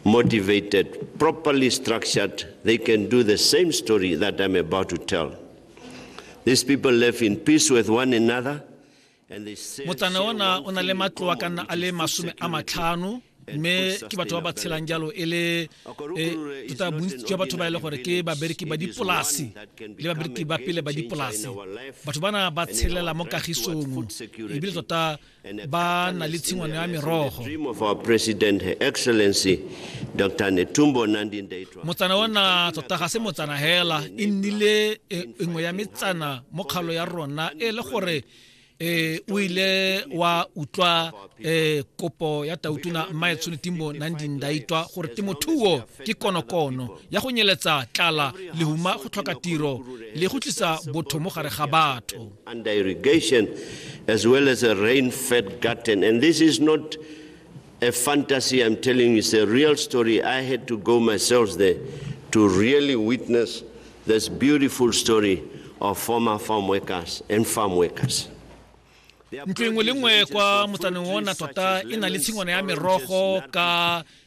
motivated, properly structured, they can do the same story that I'm about to tell. These people live in peace with one another. motsane ona o na le matloa ka nna a le masome a matlhano mme ke batho ba ba tshelang jalo e le e, tota bontsi jwa batho ba e le gore ke babereki ba dipolase le babereki ba pele ba dipolase batho bana ba tshelela mo kagisong ebile tota ba na le tshingwano ya merogo motsana ona tota ga se motsana hela e nnile e, e nngwe ya metsana mo kgalo ya rona e le gore eh o ile wa utlwa eh kopo ya tautuna mmaetsone timbo nandindaitwa gore temothuo ke konokono ya go nyeletsa tlala lehuma go tlhoka tiro le go tlisa botho mo gare ga batho as well as a rain-fed garden. And this is not a fantasy I'm telling you, it's a real story. I had to go myself there to really witness this beautiful story of former farm workers and farm workers. ntlo engwe le nngwe kwa motsaneng ona tota e na le tshingwana ya merogo ka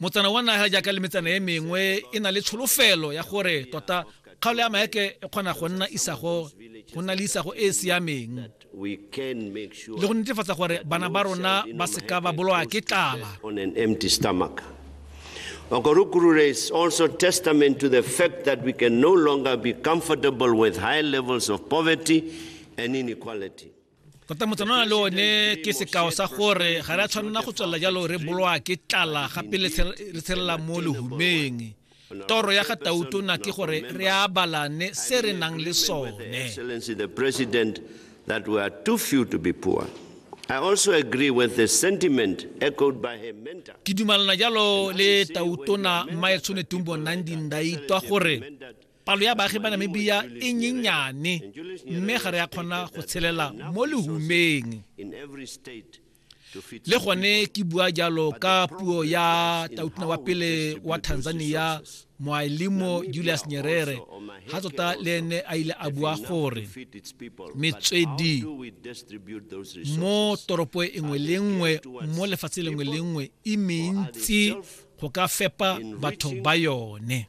Motsana wa naga jaaka le metsana e mengwe e na le tsholofelo ya gore tota kgaolo ya maeke e kgona go nna isago go nna le isago e e siameng le go netefatsa gore bana ba rona ba seka ba bolowa ke tlala Okorokoro is also testament to the fact that we can no longer be comfortable with high levels of poverty and inequality. tota motsanana le one ke sekao sa gore ga re a tshwanela go tswelela jalo re bolwa ke tlala gape re tshelela mo lehumeng toro ya ga tautona ke gore re abalane se re nang le sone that we are too few to be poor. I also agree with the sentiment echoed by her mentor. Ke dumalana jalo le tautona Maetsone Tumbo Nandi Ndaitwa gore palo ya baagi ba namibia e nyenyane mme ga re a kgona go tshelela mo lehumeng le gone ke bua jalo ka puo ya tautuna wa pele wa tanzania moaelimo julius nyerere ga tota le ene a ile a bua gore metswedi mo toropo e nngwe le nngwe mo lefatshe lengwe le nngwe e mentsi go ka fepa batho ba yone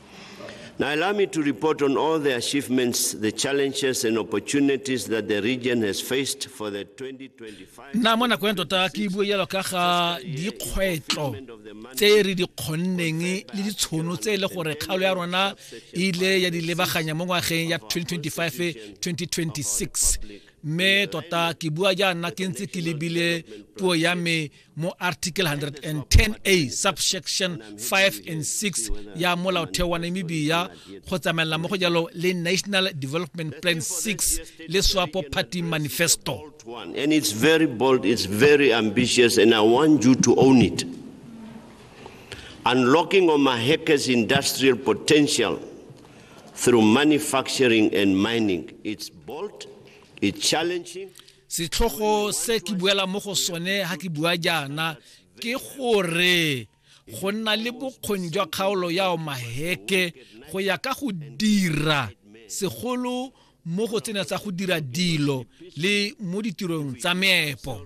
Now, allow me to report on all the achievements, the challenges, and opportunities that the region has faced for the 2025. nna mo nakong ya tota ke bue jalo ka ga dikgwetlho tse re di kgonneng le ditshono tse e le gore kgaolo ya rona e ile ya di lebaganya mo ngwageng ya 2025-2026 mme tota ke bua jaana ke ntse ke lebile puo ya me mo article 110a subsection 5 and 6 ya molaotheo wa namibia go tsamaelela mo go jalo le national development plan 6 le swapo party manifesto and it's very bold it's very ambitious and i want you to own it unlocking omahekes industrial potential through manufacturing and mining it's bold it's challenging setlhogo se ke buela mo go sone ga ke bua jaana ke gore go nna le bokgoni jwa kgaolo ya maheke go ya ka go dira segolo mo go tsena tsa go dira dilo le mo ditirong tsa meepo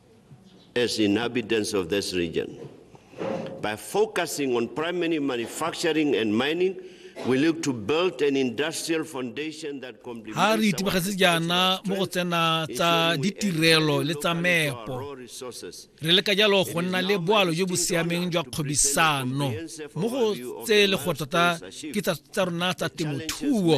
as inhabitants of this region. By focusing on primary manufacturing and mining, we look to build an industrial foundation that ha re itebagetse jaana mo go tsena tsa ditirelo le tsa meepo re leka jalo go nna le boalo jo bo siameng jwa kgwebisano mo go tse le go tota ke tsa rona tsa temothuo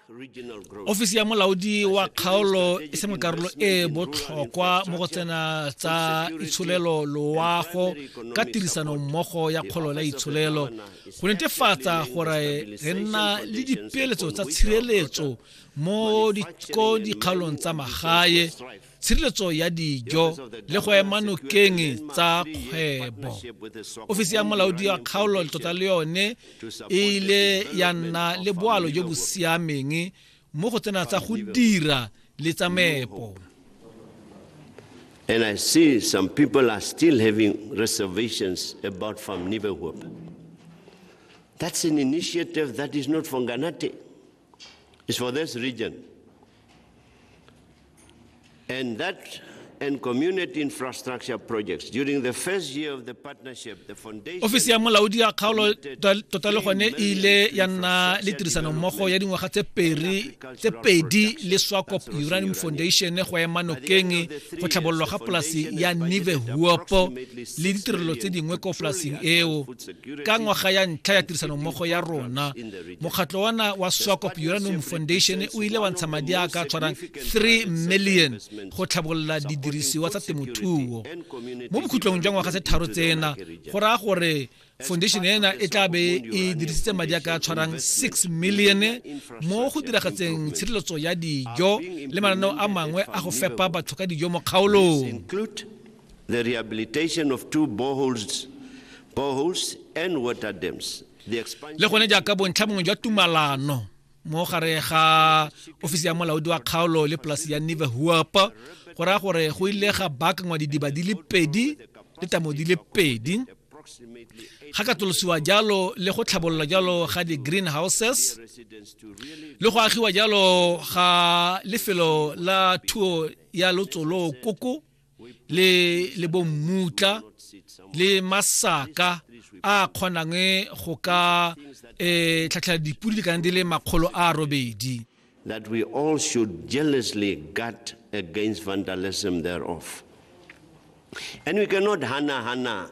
ofisi ya molaodi wa kgaolo e sengwe karolo e e botlhokwa mo go tsena tsa itsholelo loago ka tirisano mmogo ya kgolo la itsholelo go netefatsa gore re nna le dipeeletso tsa tshireletso mo dikgaolong tsa magae tshireletso ya dijo le go ema nokeng tsa kgwebo ofisi ya molaodi wa kgaolo tota le yone e ile ya nna le boalo jo bo siameng mo go tsena tsa go dira le tsa meepo And I see some people are still having reservations about Farm Nibehuop. That's an initiative that is not from Ganate. is for this region. And that and community infrastructure projects. During the first year of the partnership, the foundation... Ofisi ya molaodi ya kgaolo tota le gone e ile ya nna le tirisanommogo ya dingwaga tse pedi le swakop uranium foundation go ema nokeng go tlhabololwa ga polasi ya nive huopo le ditirelo tse dingwe ko polasing eo ka ngwaga ya ntlha ya tirisanommogo ya rona mokgatlho wana wa swakop uranium foundation o ile wa ntsha madi a ka tshwarang 3 million go tlhabolola didirisiwa tsa temothuo mo bokhutlong jwa ngwaga tse tharo tsena go raya gore foundation ena e tla be e dirisitse madi a ka tshwarang 6 million mo go diragatseng tshireletso ya dijo le mananeo a mangwe a go fepa batho ka dijo mo kgaolong the rehabilitation of two boreholes, boreholes and water dams le gone jaaka bontlha bongwe jwa tumalano mo gare ga ofisi ya molaodi wa kgaolo le polasi ya neve huap go raya gore go ile ga baakangwa didiba di le pedi le tamo di le pedi ga katolosiwa jalo le go tlhabololwa jalo ga di-greenhouses le go agiwa jalo ga lefelo la thuo ya lotsolo koko le le bommutla le masaka a kgonang go ka eh tlhatlhela dipudi di kana di le makgolo a robedi that we all should jealously guard against vandalism thereof and we cannot hana hana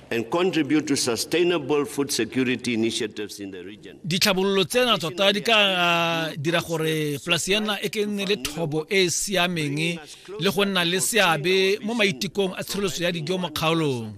and contribute to sustainable food security initiatives in the region. Ditlhabololo tsena tota di ka uh, dira gore polasi ya nna e ke nne le thobo e e siameng le go nna le seabe mo maitekong a tshireletso ya dijo mo kgaolong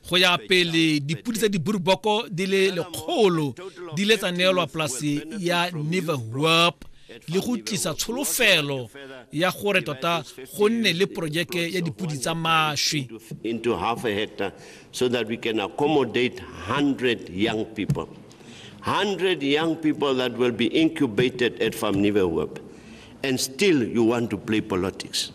go ya pele dipodi tsa diburuboko di le lekgolo di le tsa neelwa polasi ya neverwap le go tlisa tsholofelo ya gore tota go nne le porojeke ya dipodi tsa maswi into half a hectare so that we can accommodate 100 young people 100 young people that will be incubated at Famnive Web and still you want to play politics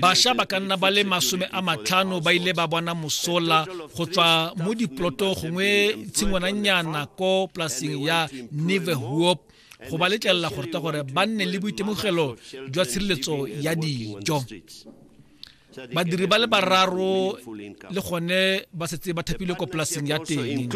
basha ba ka nna ba le masome a matlhano ba ile ba bona mosola go tswa mo diploto gongwe tshingwananyana ko polaseng ya neverhoop go ba letlelela go reta gore ba nne le boitemogelo jwa tshireletso ya dijo badiri ba le bararo le gone ba setse ba thapilwe ko polaseng ya teng